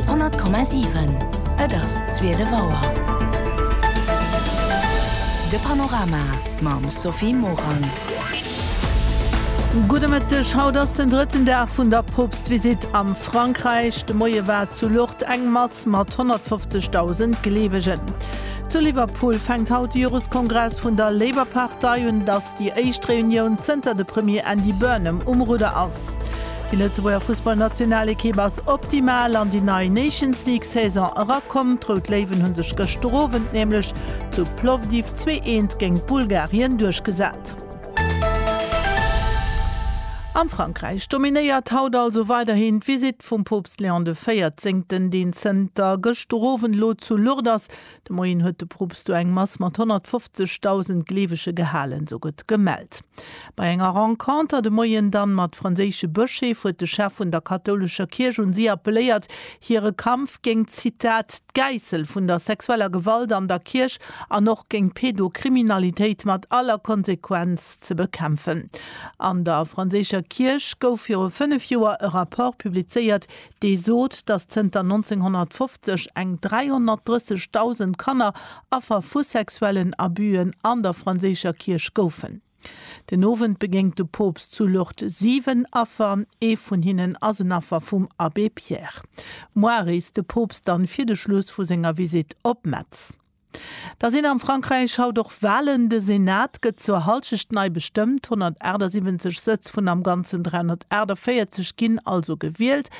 100,7 Et ass 12 Auer. De Panorama mam Sophie Morang. Gudde Mëtteg. Haut ass den drëtten Dag vun der Poopstvisitt a Frankräich. De Moie war zu Lourdes eng Mass mat 150.000 Gleewegen. Zu Liverpool fänkt haut de Joreskongress vun der Labour-Partei un. Et ass déi éischt Reunioun zënter de Premier Andy Burnham um Rudder ass. Déi Lëtzebuerger Fussballnationalekipp ass optimal an déi nei Nations League Saison erakomm. D'Rout Léiwen hu sech gëschter Owend nämlech zu Plovdiv zwee eent géint Bulgarien duerchgesat. A Frankräich dominéiert haut also weiderhin d'Visitt vum Poopst Léon de Véierzéngten, deen zënter gëschter Owend elo zu Lourdes ass, De Moien huet de Poopst do eng Mass mat 150.000 Gleewege gehalen, sou gëtt gemellt. Bei enger Renconter de Moien dann mat franséische Bëscheef huet de Chef vun der kathoulescher Kierch un si appelléiert, hire Kampf géingt, Zitat, d'Gäissel vun der sexueller Gewalt an der Kierch an och géingt d'Pedokriminalitéit mat aller Konsequenz ze bekämpfen. An der franséischer Kierch gouf viru fënnef Joer e Rapport publizéiert, dee sot, datt zënter 1950 eng 330.000 Kanner Affer vu sexuellen Abüen an der franséischer Kierch goufen. Den Owend begéngt de Poopst zu Lourdes 7 Affer, ee vun hinnen ass en Affer vum Abbé Pierre. Moies reest de Poopst dann fir de Schluss vu senger Visitt op Metz. Da sinn am Frankräich haut och Walen. De Senat gëtt zur Hallschecht nei bestëmmt. 178 Sëtz vun am Ganzen 348 ginn also gewielt.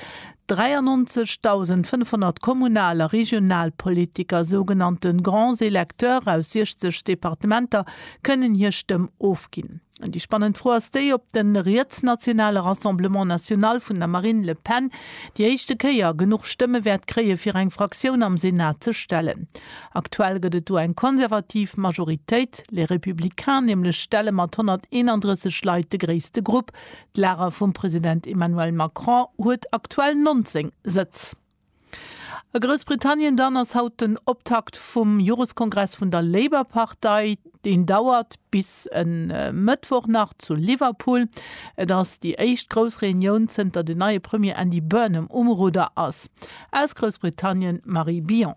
93.500 Kommunal a Regionalpolitiker, sougenannte Grands électeurs aus 60 Departementer, kënnen hir Stëmm ofginn. An déi spannend Fro ass déi, ob de rietsnationale Rassemblement National vun der Marine Le Pen déi éischte Kéier genuch Stëmme wäert kréie fir eng Fraktioun am Senat ze stellen. Aktuell gëtt et do eng konservativ Majoritéit. Les Républicains nämlech stelle mat 131 Leit de gréisste Grupp. D'Lager vum President Emmanuel Macron huet aktuell 19 Sëtz. A Groussbritannien dann ass haut den Optakt vum Joreskongress vun der Labour-Partei. Deen dauert bis e Mëttwoch nach zu Liverpool. Et ass déi éischt grouss Reunioun, zënter den neie Premier Andy Burnham um Rudder ass. Aus Groussbritannien d'Marie Billon.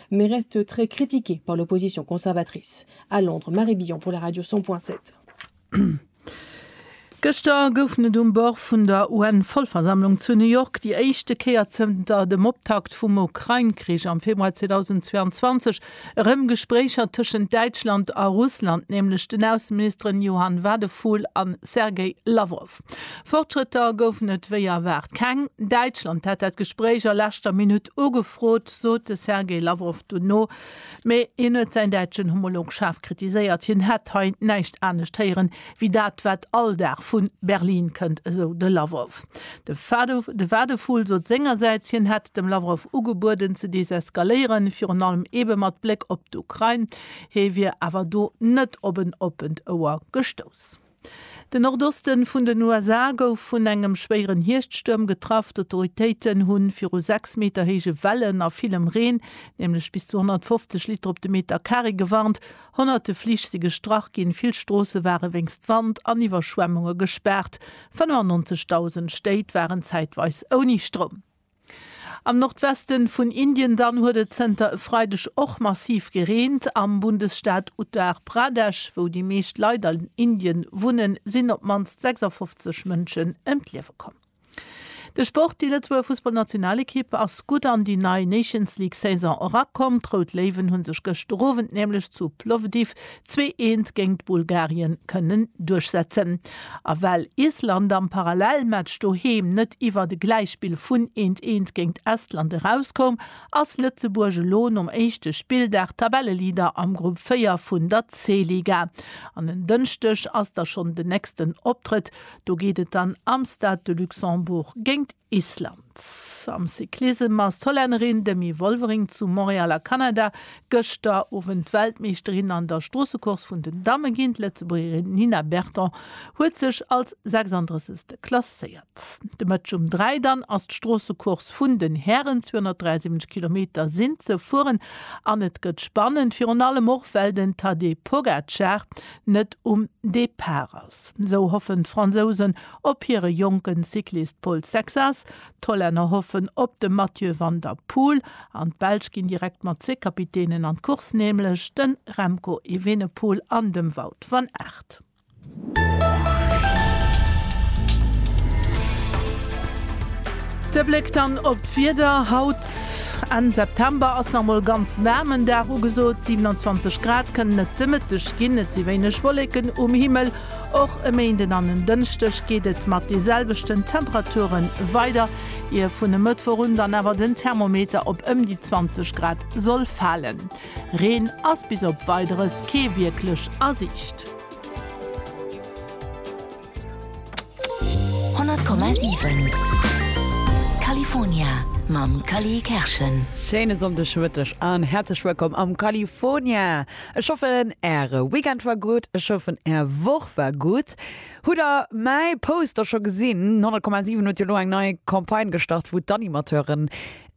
mais reste très critiqué par l'opposition conservatrice. À Londres, Marie Billon pour la radio 100 point 7. Gëschter goufen et um Bord vun der UN-Vollversammlung zu New York déi éischte Kéier zënter dem Optakt vum Ukrain-Krich am Februar 2022 erëm Gespréicher tëschent Däitschland a Russland, nämlech den Ausseministeren Johann Wadephul a Sergei Lawrow. Fortschrëtter goufen et wéi erwaart keng. Däitschland hätt dat Gespréich a leschter Minutt ugefrot, sot de Sergei Lawrow dono. Mee hien huet säin däitschen Homolog schaarf kritiséiert. Hien hätt hei näischt anescht héieren, wéi dat wat all Dag vu Berlin kënnt, esou de Lawrow. De Wadephul sot sengersäits, hien hätt dem Lawrow ugebueden ze deseskaléieren, virun allem eebe mat Bléck op d'Ukrain. Hie wier awer do net op en oppent Ouer gestouss. Den Nordoste vun den USA gouf vun engem schwéieren Hierschtstuerm getraff. D'Autoritéiten hu viru 6 Meter héije Wellen a villem Reen, nämlech bis zu 150 Liter op de Meter Carré, gewarnt. Honnerte Flich si gestrach ginn, vill Stroosse ware wéinst Wand an Iwwerschwemmunge gespaart. 95.000 Stéit waren zäitweis ouni Stroum. Am Nordweste vun Indien dann huet et zënter e Freideg och massiv gereent. Am Bundesstaat Uttar Pradesh, wou déi meescht Leit an Indien wunnen, sinn op d'mannst 56 Mënschen ëm d'Liewe komm. De Sport, Déi Lëtzebuerger Fussballnationalekipp ass gutt an déi nei Nations-League-Saison erakomm. D'Rout Léiwen hu sech gëschter Owend nämlech zu Plovdiv Zwee Eent géingt Bulgarien kënnen duerchsetzen. A well Island am Parallelmatch doheem net iwwert e Gläichspill vun Eent Eent géingt Estland erauskoum, ass Lëtzebuerg elo nom éischte Spilldag Tabelleleader am Grupp 4 vun der C-Liga. An en Dënschdeg ass da schonn den nächsten Optrëtt, do geet et dann am Stade de Luxembourg géingt. Island. Am Cyclissem ass d'Hollännerin Demi Wolvering zu Montréal a Kanada gëschter Owend Weltmeeschterin an der Stroossecourse vun den Damme ginn. D'Lëtzebuergerin Nina Berton huet sech als 36. klasséiert. De Mëtteg um 3 dann ass d'Stroossecourse vun den Hären. 273 Kilometer sinn ze fueren an et gëtt spannend, virun allem och well den Tadej Pogacar net um Depart ass. Esou hoffen d'Fransousen Op hire jonken Cyclist Pol Sexas, d'Hollänner hoffen op de Mathieu van der Poel an d'Belsch ginn direkt mat zwee Kapitänen an d'Course, nämlech de Remco Evenepoel an dem Wout van Aert. De Bléck dann op d'Wieder, haut Enn September ass nach mol e ganz waarmen Dag ugesot, 27 Grad kënnen et de Mëtteg ginn, et si wéineg Wolleken um Himmel. Och e Méinden an en Dënschdeg geet et mat de selwechten Temperature weider, ier vun e Mëttwoch un dann awer den Thermometer op ëm déi 20 Grad soll falen. Reen ass bis op Weideres kee wierklech a Siicht. Schéine Sonndeg Mëtteg an häerzlech wëllkomm am California! Ech hoffen äre Weekend war gudd, ech hoffen är Woch war gudd. Hutt der mäi Poster scho gesinn? 100,7 huet jo lo eng nei Campagne gestart wou d'Animateuren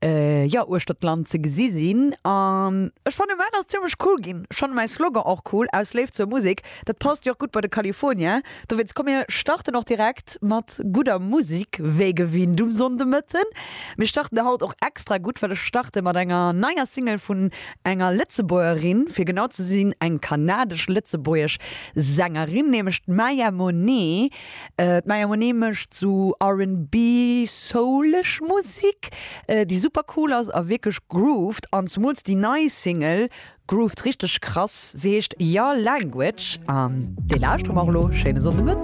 jo uechter d'Land ze gesi sinn an ech fannen dat ass zimlech cool ginn. Ech fannen mäi Slogan och cool, Aus Léift zur Musek. Dat passt jo och gudd bei de California. Dowéinst komm mir starten och direkt mat gudder Musik wéi gewinnt um Sonndemëtten. Mir starten de haut och extra gutt, well ech starte mat enger neier Single vun enger Lëtzebuergerin, fir genau ze sinn eng kanadesch-lëtzebuergesch Sängerin, nämlech d'Maya Monet. D'Maya Monet mécht sou RnB, soulesch Musik, déi super cool ass a wierklech grooved an zemools déi nei Single Groovt richteg krass. Se heescht Your Language an déi lauschteren mer och elo. Schéine Sonndemëtten.